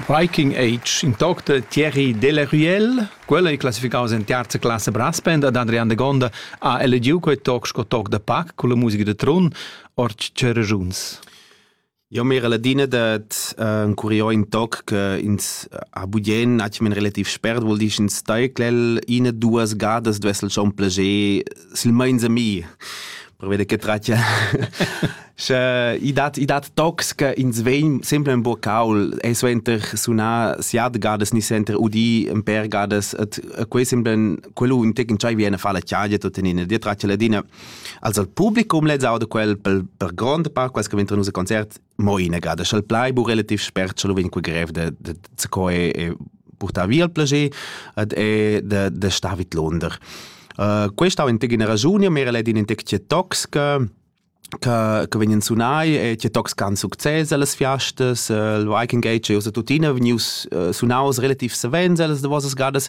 Viking Age, in toc da Thierry Delaruelle. Quella è classificaus en terza classe brass band ad Adrian de Gonda ha elegiu quei toc sco toc da pac con la musica de Trun, ord tscheragiuns. Eu m'era ladina dad encurier ün toc che ins ha bugien atgnamen relativ spert, vuol dir sch'ins taiclel ina duas gadas duess el schon plager silmeins a mi, pervei da che tratga sche i dat i dat tocs che ins vegn sempre en bocaul e suenter sunar siat gadas ni suenter udir in per gadas et quei semblan quello un tec entschei bien a far la tgaglia tot en ina dia tratga ladina Also il publicum lezza da quel per, per grond part quels che vengono a concert mo inagada sch'el plai bu relativ spert sche lo vegn quel grev de de de co e, e portar via il plager ed e de de sta vid Londra. Uh, questa è una ragione, ma è in tec toxica che, che vengono sunai e che tocs can succes alles fiastas. Il Viking Gate e usa tuttina venius uh, sunaus relativ savens alles de vossas gadas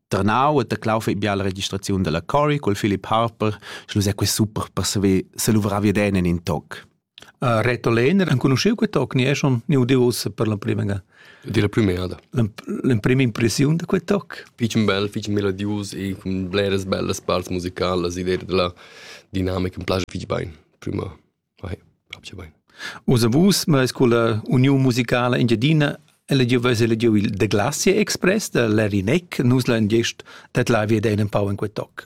ternau e taclau fei bia la registraziun dalla Cory col Philip Harper, sche lu sei quei super per saver se luvrar via den in in toc. Uh, Reto Lehner, enconosceu quei toc, ni è schon ni udiu ussa per la prima ga? Di la primera. L'emprima impressiun da quei toc? Fitchen bel, fitchen melodius e cun bleras bellas parts musicalas, idea della dinamica mi piace fitch bein, prima. Osa vus meis culla Uniun musicala Engiadina elegiu veis elegiu il The Glacier Express da Larry Neck, nus la ingest dat la via da in pau in quei toc.